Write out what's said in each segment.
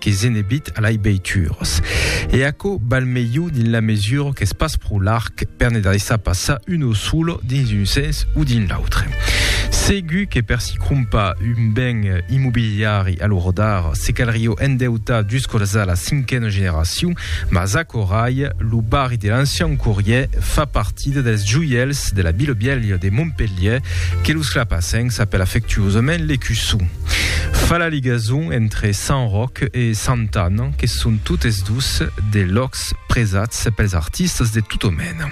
que se n'ebit a lai beitures. E aquò val melhor dins la mesura qu'es pas pro larg per ne daissar passar un o solo dins un sens o dins l'autre. Segur que per si crompar un ben immobiliari a lo rodar, se calrió endeutar juscolza la cinquena generacion, mas acorai, lo barri de l'ancian Corrier fa partida dels joièls de la Bilobièlha de Montpelhièr que los clapasencs apèl afectuosament l'Ecussou. Fa la ligason entre Sant Ròc e Sant Anne, que son totes dos de lòcs presats pels artistas de tota mena.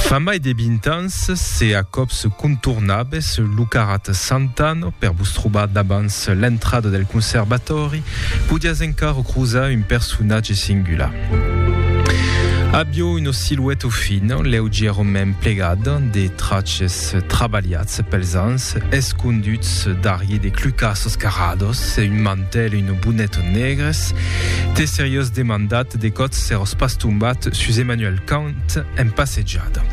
Fa mai de 20 ans, se a còps contornabes lo carrat Sant Anne per vos trobar davans l'entrada del conservatòri, podiás encara crosar un personatge singular. Avió una silueta fina, leugièrament plegada, de traches Èstes trabalhats pels ans, esconduts darrier de clucassos carrados e un mantèl e un bonet negres, t'es seriós demandat de còth s'èros pas tombat sus Emmanuel Kant en passejada?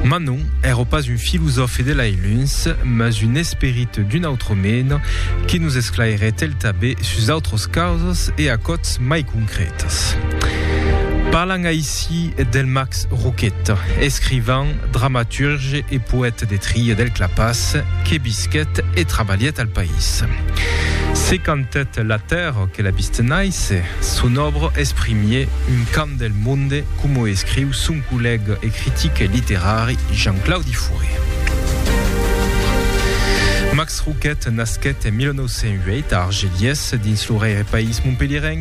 Mas non, èro pas un filosòfe de lai luns, mas un esperit d'una autra mena que nos esclairèt el tanben sus autras causas e a còths mai concrètes. Parlan Si Delmax Roquet, escrivan, dramaturge e poète de Tria del Clapàs, que visquèt e trabalhèt al país. Se cantèt la tèrra que la vist nàisser, son òbra es primier un cant del monde coma o escriu son collèga e critic literari Jean-Claudi Fouré. Max Roquet nasquèt en 1908 a Argelies, dins lo rèirepaís montpelhièrenc.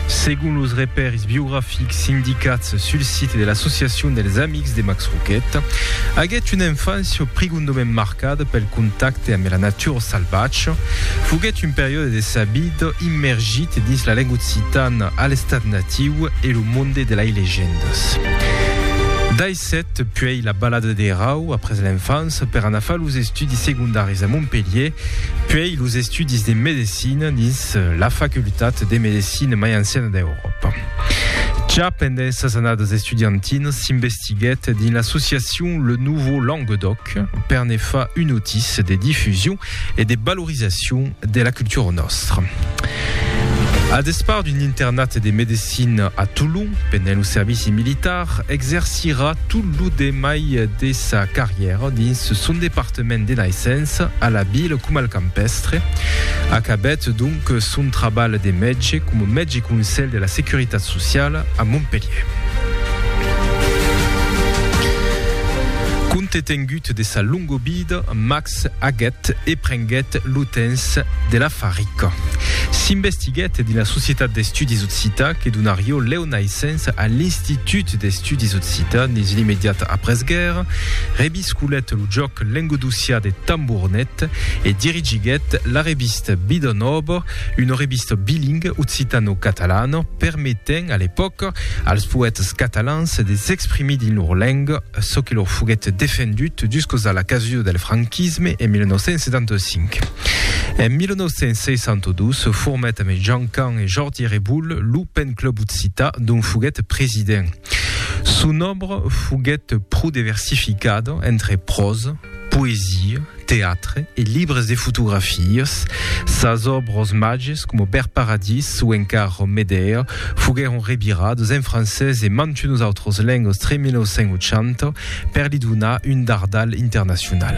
Segon los repèrs biografics indicats sul site de l'associacion dels Amics de Max Roquet, aguèt una enfància prigondament marcada pel contacte amb la natura salvatja, foguèt un periòde de sa vida immergit dins la lenga occitana a l'estat natiu e lo monde de lai legendas. Sèt, puèi la balada de Rau après l'enfance per anar far los estudis segondaris a Montpelhier, puèi los estudis de medecina dins la facultat de medecina mai anciana d'Euròpa. Ja pendent sas annadas estudiantinas s'investiguèt dins l'associacion Le Nouveau Languedoc per ne far un otis de difusion e de valorizacion de la cultura nòstra. A despart d'un internat de medecina a Tolon pendent lo servici militar, exercirà tot lo demai de sa carrièra dins son departament de naissença, a la vila coma al campèstre. Acabèt donc son trabalh de mètge coma mètge conselh de la Securitat Sociala a Montpelhièr. Compte tengut de sa longa vida, Max. S'aguèt e prenguèt lo temps de la farica. S'investiguèt dins la Societat d'Estudis Occitans que donarió lèu naissença a l'Institut d'Estudis Occitans dins l'imediata après-guèrra, revisculèt lo jòc lengodocià de Tambournet e dirigiguèt la revista Bidon Òbor, una revista bilinga occitano-catalana permetent a l'epòca als poètas catalans de s'exprimir dins lor lenga. çò que lor foguèt defendut juscos a la casu del franquisme en 1975. En 1962 se formèt amb Jean Can e Jordi Reboul lo Pen Club Occità dont foguèt president. Son òbra foguèt pro deversificada entre pròsa, poesia, teatre e libres de fotografias, sas òbros màges coma Bèrt Paradís o encara Ròm Medèa foguèron revirades en francés e mantunos autros lengas tre 1980 per li donar un dardal internacional.